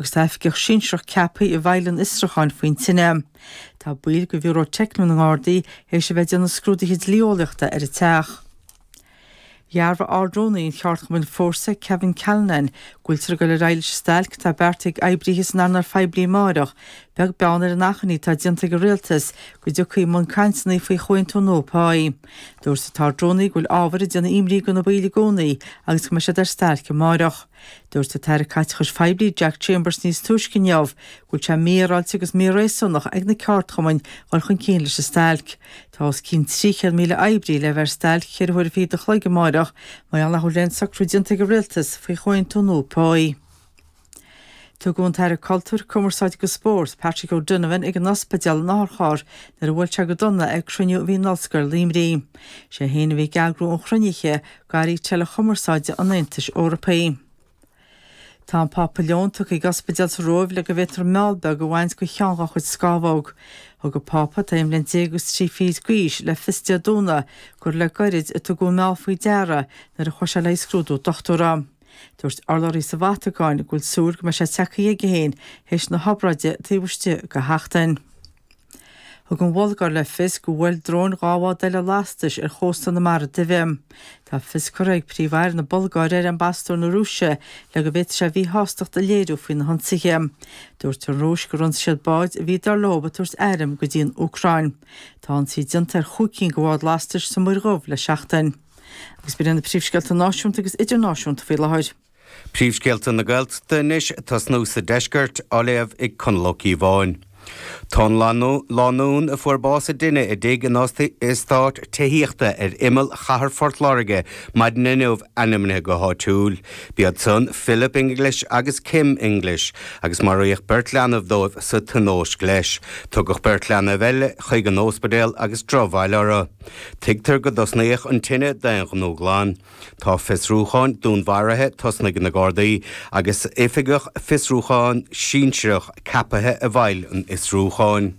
agus tá oifigeach sinsearach ceaptha i bhfeighil an fhiosrucháin faoin tine. Tá baill de Bhiúró Teicniúil na nGardaí tar éis a bheith ag déanamh scrúduithe dlí-eolaíochta ar an teach. Dhearbhaigh Ard-Rúnaí an Cheardchumainn Fórsa, Kevin Callinan, go bhfuiltear ag dul ar aghaidh leis an stailc atá beartaithe ag oibrithe san earnáil phoiblí amárach, beag beann ar an achainí atá déanta ag an Rialtas go dtiocfaí i mbun cainteanna faoi chomhaontú nua páí. Dúirt an tArd-Rúnaí go bhfuil ábhar ag déanamh imní do na baill i gcónaí agus go mbeidh siad ar stailc amárach. Dúirt an tAire Caiteachais Phoiblí Jack Chambers níos túisce inniu go bhfuil sé mífhéaráilte agus míréasúnach ag na ceardchumainn dhul chun cinn leis an stailc. Tá os cionn 300,000 oibrí le bheith ar stailc ceithre huaire fichead a chloig amárach mar gheall nach bhfuil aon socrú déanta ag an Rialtas faoi chomhaontú nua páí. Tugadh an tAire Cultúir, Cumarsáide agus Spóirt, Patrick O'Donovan ag an ospidéal in otharcharr nuair a bhuail sé go dona ag cruinniú a bhí in Ollscoil Luimnigh. Is é féin a bhí ag eagrú an chruinnithe, d'Airí Teileachumarsáide an Aontais Eorpaigh. Tá an Pápa Leon tugtha ag ospidéal sa Róimh le go bhféadfar meall beag a bhaint de cheann dhá chuid scámhóg. Thug an Pápa, atá aon bhliain déag agus trí fichid d'aois, le fios Dé Domhnaigh gur le gairid a tugadh an meall faoi deara nuair a chuaigh sé le haghaidh scrúdú dochtúra. Dúirt urlabhraí sa Vatacáin go bhfuil súil go mbeidh sé tagtha chuige féin théis na hobráide taobh istigh de sheachtain. Thug an Bhulgáir le fios gur bhuail dróin dhá bhád eile lastais ar chósta na Mara Duibhe. Tá fios curtha ag Príomh-Aire na Bulgáire ar Ambasadóir na Rúise le go bhféadfaidh sé a mhíshástacht a léiriú faoi na hionsaithe. Dúirt an Rúis gur ionsaigh siad báid a bhí, dar leo, ag tabhairt airm go dtí an Úcráin. Tá ionsaí déanta ar chúig cinn de bháid lastais sa Mhuir Dhubh le seachtain. Agus b'in iad na príomhscéalta náisiúnta agus idirnáisiúnta faoi láthair. Príomhscéalta na Gaeltachta anois tosnú sa deisceart, á léamh ag Conall Ó Cíobháin. Tá an lánúin a fuair bás i dtine i dtigh in eastát tithíochta ar imeall chathair Phort Láirge maidin inniu ainmnithe go háitiúil. B'iad san Philip English agus Kim English, agus maraíodh beirt leanbh dóibh sa tionóisc leis. Tugadh beirt leanbh eile chuig an óspidéal agus drochbhail orthu. Tuigtear go dtosnaíodh an tine d'aonghnó glan. Tá fiosrúcháin dúnmharaithe tosnaithe ag na Gardaí agus oifigeach fiosrúcháin sinsearach ceapaithe i bhfeighil an fhiosrúcháin.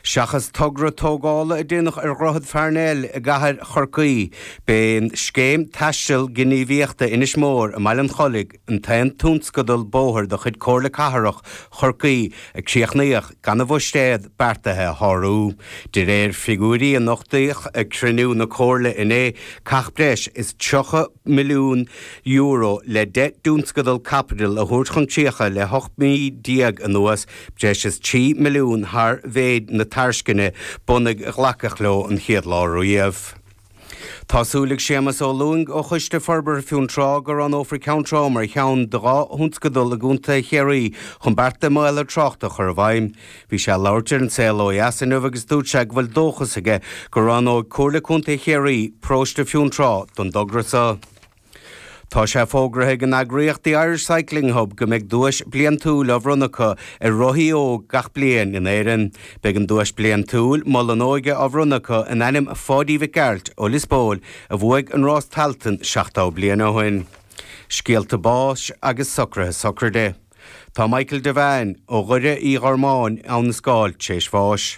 Seachas togra tógála a déanadh ar Dhroichead Pharnell i gCathair Chorcaí, b'é an scéim taistil gníomhaíochta Inis Mór i mBaile an Chollaigh, an t-aon tionscadal bóthair de chuid Comhairle Cathrach Chorcaí a críochnaíodh gan an bhuiséad beartaithe a shárú. De réir figiúirí a nochtaíodh ag cruinniú na Comhairle inné, caitheadh breis is €30 milliún le deich dtionscadal caipitil a thabhairt chun críocha le 18 mí anuas, breis is €3 milliún thar mhéid na tairisceana bunaidh a glacadh leo an chéad lá riamh. Tá súil ag Séamas Ó Lúing ó Choiste Forbartha Fionntrá go roghnófar Ceann Trá mar cheann de dhá thionscadal i gContae Chiarraí chun bearta maolaithe tráchta a chur i bhfeidhm. Bhí sé ag labhairt ar An Saol ó Dheas inniu agus dúirt sé go bhfuil dóchas aige go roghnóidh Comhairle Contae Chiarraí paróiste Fionntrá don dtogra seo. Tá sé fógraithe ag an eagraíocht The Irish Cycling Hub go mbeidh duais bliantúil á bhronnadh acu ar rothaí óg gach bliain in Éireann. Beidh an duais bliantúil, Mol an Óige á bhronnadh acu in ainm Pháidí Mhic Gearailt ó Lios Póil a bhuaigh an Rás Tailteann 70 bliain ó shin. Scéalta báis agus socruithe sochraide. Tá Michael Devane, ó Dhoire Uí Ghormáin, Abhainn an Scáil tar éis bháis.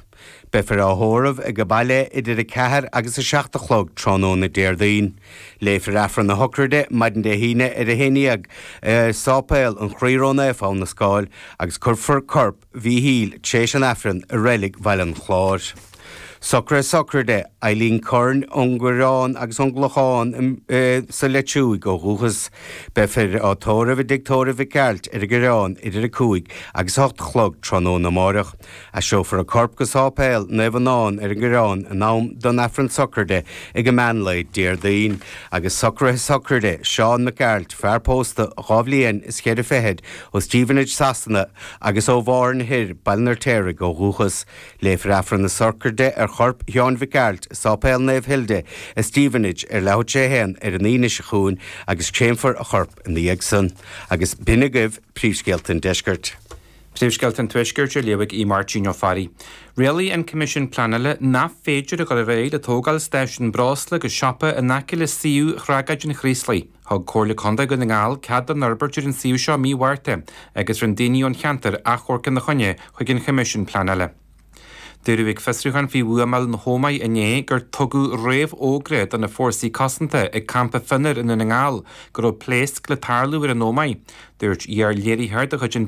Beifear á thórramh ag baile idir 4 agus 7 a chlog tráthnóna Déardaoin. Léifear Aifreann na sochraide maidin Dé hAoine ar a haon dhéag i Sáipéal an Chroí Ró-Naofa Abhainn an Scáil agus cuirfear corp Mhíchíl, tar éis an Aifrinn i Reilig Bhaile an Chláir. Socruithe sochraide Eileen Curran ón gCoireán agus ón gClochán sa Leitriúigh ó dhúchas. Beifear á tórramh i dtigh tórraimh Mhic Gearailt ar an gCoireán idir 5 agus 8 a chlog tráthnóna amáireach. Aistreofar an corp go Sáipéal Naomh Fionán ar an gCoireán in am don Aifreann sochraide ag an meán lae Déardaoin. Agus socruithe sochraide Seán Mac Gearailt, fear pósta dhá bhliain is cheithre fichid Ó Stevenage, Sasana, agus ó Mhárthain Thoir, Baile an Fheirtéaraigh, ó dhúchas. Léifear Aifreann na Sochraide ar chorp Sheáin Mhic Gearailt i Sáipéal Naomh Hilda i Stevenage ar leathuair tar éis a haon ar an Aoine seo chugainn agus créamfar a chorp ina dhiaidh san. Agus b'shin agaibh Príomhscéalta an Deiscirt. Príomhscéalta an Tuaiscirt á léamh ag Aodh Máirtín Ó Fearraigh. Rialaigh an Coimisiún Pleanála nach féidir a dhul ar aghaidh le tógáil Stáisiún Breosla agus Siopa in aice le suíomh thragóid an Chraoslaigh. Thug Comhairle Contae Dhún na nGall cead don fhorbairt ar an suíomh seo mí Mhárta agus rinne daoine ón cheantair achomharc ina choinne chuig an Choimisiún Pleanála. Dúradh ag fiosrúchán faoi bhuamáil na hÓmaí inné gur tugadh réamhfhógra do na fórsaí cosanta ag Campa Fionnair i nDún na nGall go raibh pléasc le tarlú ar an Ómaigh. Dúirt iar-léiritheoir de chuid an.